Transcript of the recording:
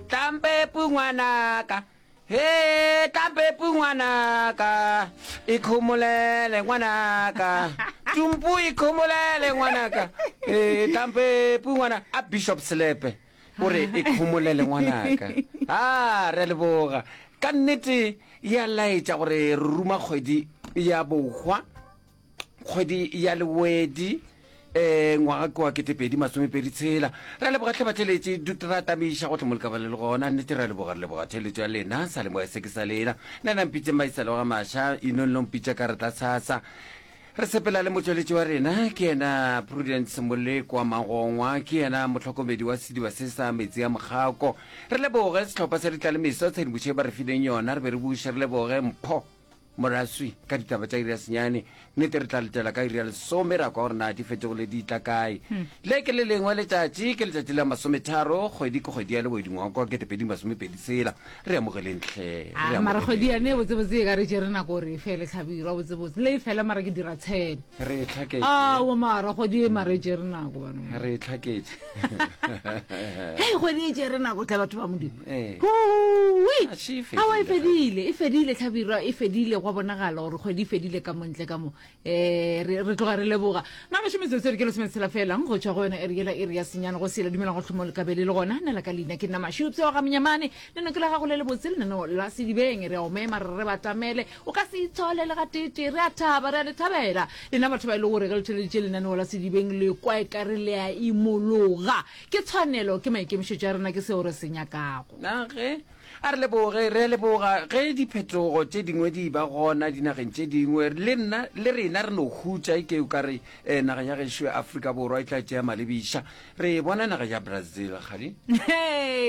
tlampepu ngwanaka he tlampepu ngwanaka ikhomolele ngwanaka tumpu ikhomolele ngwanaka e tlampepu ngwana a bishop selepe o re ikhomolele ngwanaka a re leboga ka nnete ya laetša gore re ruma kgwedi ya bohwa kgwedi ya lewedi um ngwaga ke wa ketepedi masomepedi tshela ra leboga tlhabatheletši dut ra tamiša go tlhomolekaba le le gona nnete ra leboga re leboga theletso ya lena sa le moya se ke sa lena nna nang pitse maisalo ga maša inong long pitsa ka re tla tshasa re sepela le motsweletši wa rena ke yena prudence moleko wa magongwa ke yena motlhokomedi wa sediba se sa metsi ya mokgako re leboge setlhopha sa ditlalemeso tshedimošo e ba re fileng yona re be re buše re leboge mpho Moraswi, ka ditaba tša iri ya senyane, nnete re tla letela ka iri ya lesome ra kwa gore na di fetogile di tla kae. Le ke le lengwe letšatši, ke letšatši la masometharo, kgwedi ke kgwedi ya lebodi ngwaga kwa kete pedi masome pedi sela. Re amogeleng hle, re Ah, amogeleng. mara kgwedi yane botsebotse e ka re tšere nako gore e fele tlhabirwa botsebotse le e fela mara ke dira tshele Re e tlhaketše. ao mara kgwedi e mara e tšere nako bana re e tlhaketše hei kgwedi e tšere nako tla batho ba modimo eh. awa e fedile e fedile tlhabirwa e fedile gwa bonagala gore kgwedi e fedile ka montle ka mo um re tloga re leboga mamasho metsotso re ke lesome tshela felang go tswa go yone ereela e re ya senyana go sela dumelang go tlhomo lekabele le gona nna la ka leina ke nna mashupse wa ga menyamane leno ke la gago le le botse lenano la sedibeng re omema re re batamele O ka se itshole le gateetee. Re a thaba, re a le thabela, lena batho ba e lego gore ge le theleditše lenaneo la Sedibeng le kwa e ka re le a imologa. Ke tshwanelo, ke maikemišetšo a rena, ke seo re se nyakago. Na ge A re leboge, re a leboga ge diphetogo tše dingwe di e-ba gona dinageng tše dingwe, le nna le rena re no hutša. E ke o ka re eh, naga ya gešo ya Afrika Borwa e tla tšea malebiša. Re e bona naga ya Brazil, kgadi. Hee,